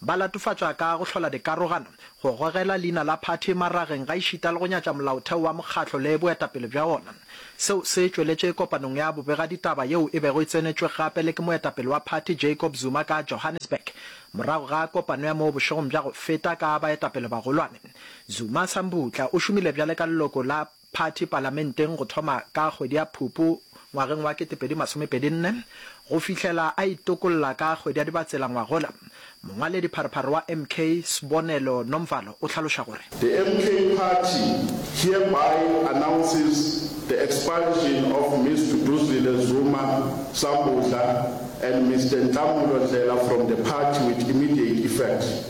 Ba latofatša ka go hlola dikarogano, go gogela leina la phathi marageng gaešita le go nyatša molaotheo wa mokgatlo le boetapele bja wona. Seo se tšweletše kopanong ya bobegaditaba yeo e bego e tsenetšwe gape le ke moetapele wa phathi Jacob Zuma ka Johannesburg morago ga kopano ya moo bošegong bja go feta ka baetapele-bagolwane. Zuma Sambutla o šomile bjale ka leloko la Phathi palamenteng go thoma ka kgwedi ya Phupu ngwageng wa 2024 go fihlela a itokolla ka kgwedi ya Dibatsela ngwagola, mongwaledi pharephare wa MK, Sbonelo Nomvalo o hlaloša gore. The MK Party hereby announces the expulsion of Miss Duduzile Zuma Sambudla and Mister Nhlamulo Ndlela from the party with immediate effect.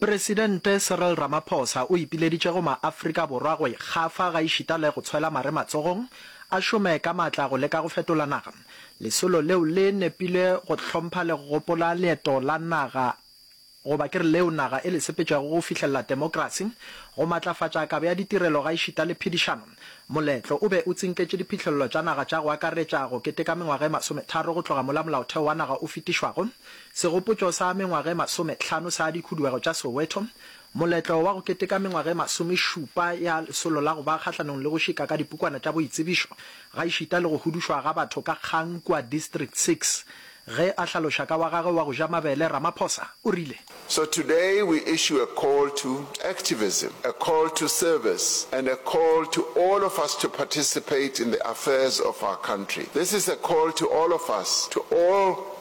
Presidente Cyril Ramaphosa o ipileditše go maAfrika Borwa go ikgafa gaešita le go tshwela mare matsogong, a šome ka matla go leka go fetola naga. Lesolo leo le nepile go hlompha le go gopola leeto la naga goba ke re leo naga e le sepetšego go fihlelela temokerasi, go matlafatša kabo ya ditirelo gaešita le phedišano. Moletlo o be o tsinketše diphihlello tša naga tša go akaretša go keteka mengwaga e masometharo go tloga mola molaotheo wa naga o fetišwago, Segopotšo sa Mengwag'e Masome Hlano sa Dikhuduego tša Soweto, Moletlo wa go keteka mengwag'e masome šupa ya Lesolo la go ba kgahlanong le go šika ka dipukwana tša boitsebišo gaešita le go hudušwa ga batho ka kgang kua District Six Ge a hlaloša ka wa gagwe wa go ja mabele, Ramaphosa o rile. So today we issue a call to activism, a call to service and a call to all of us to participate in the affairs of our country. This is a call to all of us, to all.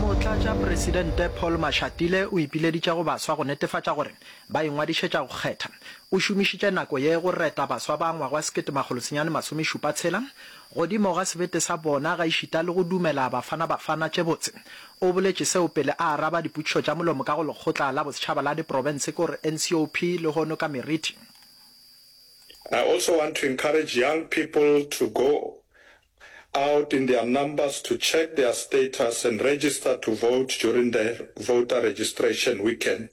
motlatšapresidente paul mashatile o ipileditše go baswa go netefatša gore ba ingwadišetša go kgetha o šomišitše nako ye go reta baswa ba ngwagwa 1976 Godimo ga sebete sa bona, gaešita le go dumela Bafana Bafana tše botse. O boletše seo pele a araba dipotšišo tša molomo ka go Lekgotla la Bosetšhaba la Diprofense ke gore NCOP lehono ka meriti. I also want to encourage young people to go out in their numbers to check their status and register to vote during the voter registration weekend.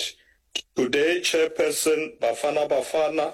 Today, Chairperson, Bafana Bafana,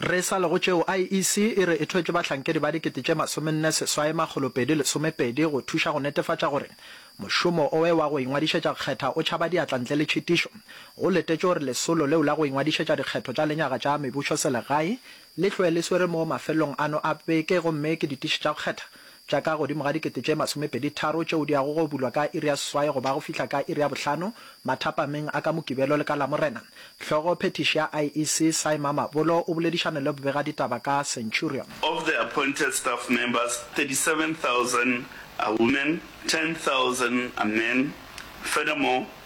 Re sa le go tšeo, IEC e re e thwetše bahlankedi ba dikete tše masomenne seswai makgolo pedi lesomepedi go thuša go netefatša gore mošomo oe wa go ingwadišetša kgetha o tšhaba diatla ntle le tšhitišo. Go letetšwe gore lesolo leo la go ingwadišetša dikgetho tša lenyaga tša mebušoselegae le hloe le swere moo mafelelong ano a beke gomme ke ditiši tša go kgetha tša ka godimo ga dikete tše masomepedi tharo tšeo di yago go bulwa ka iri ya seswai go ba go fihla ka iri ya bohlano mathapameng a ka Mokibelo le ka Lamorena. Hlogo phethiši ya IEC, Cy Mamabolo, o boledišane le bobegaditaba ka Centurion. Of the appointed staff members, 37,000 are women, 10,000 are men. Furthermore,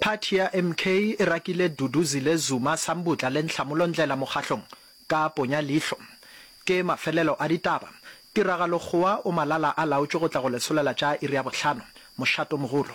Phathi ya MK e rakile Duduzile Zuma Sambutla le Nhlamulo Ndlela mokgahlong ka ponya leihlo. Ke mafelelo a ditaba. Tiragalo Kgowa o malala a laotšwe go tla go lesolela tša iri ya bohlano. Mošato mogolo.